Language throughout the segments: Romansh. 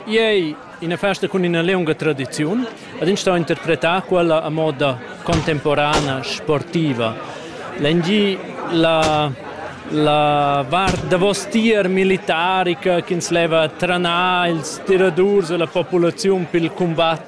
Ei ina festa cun ina liunga tradiziun ed ins sto interpretar quella a moda contemporana, sportiva. Lengi la, la vart davostier militarica ch'ins leva tranar ils tiradurs e la populaziun pil cumbat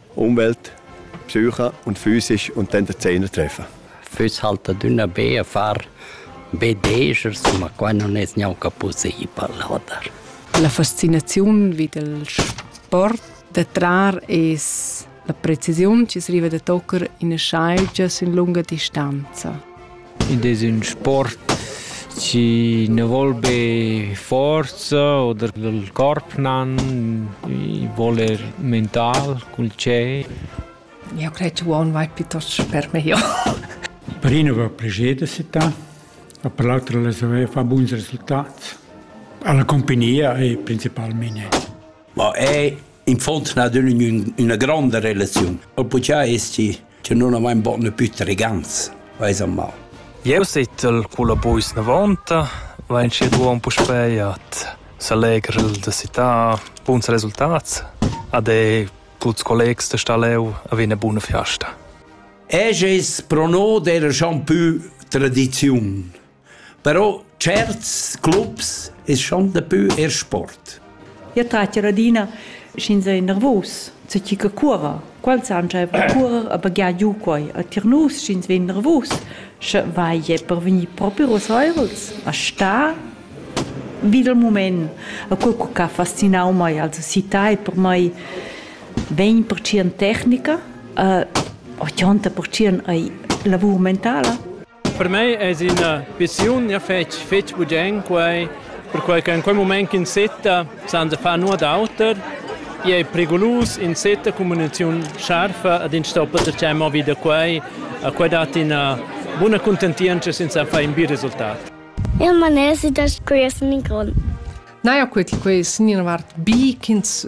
Umwelt, Psyche und physisch und dann der Zehner treffen. Füsse halt d'una be a far bedesers, ma qua non es gnanca possibel, oder? La fascinaziun vid il sport da trar es la precisiun chi s'riva da tocker in a schaigia sün lunga distanza. Id es ün sport chi nu voul be forza oder il corp nan, i voul er mental cul tschè. Eu cret uonn vai piuttost per meglio. Prima va plaisir da settà, e per l'autra las avair fa buns resultats. Alla compagnia e principalmente. Ma è In fond n'ha ün, üna gronda relaziun. O puchà esti che nun ha mai botna pü tregans, vais a mal. Eu set al culabois navonta, vain schi duon puspei at s'allegr da citar buns resultats. Ade tuts collegs da stal eu a vina buna fiasta. Eges pro no d'era schon pü tradiziun. Però tscherts clubs eschan dapü eir sport. Jeu trat era adina, sch'ins ei nervus, co chi che cuora. Quels han già curer e baghiar giu quei. E tier nus, sch'ins vegn nervus, sche vai jeu per vegnir propi ruseivels a star vi dal mument. E quel ch'ha fascinau mei, also citai per mei vegn pertschien tecnica, e ochonta pertschien ei lavur mentala. Per mei es ina pissiun ja fetg fetg bugen quai, perquai che in quel mument ch'in setta sainza far nuot auter, i è periclus, in setta cumünaziun scharfa ad ün stoppa tratgà mo vi da quai, a quai dat ina buna cuntentientscha senza far in bi resultat. Eu manesi da scrier sin il grond. Naja, quei quei sin ina vart bi ch'ins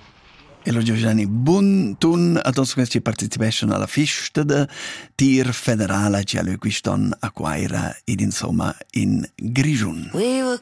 E lo Giovanni bun tun a tots questi chi partecipeschan alla fista da tir federala chi ha lö quist'on a Cuaira ed insomma in Grischun. We were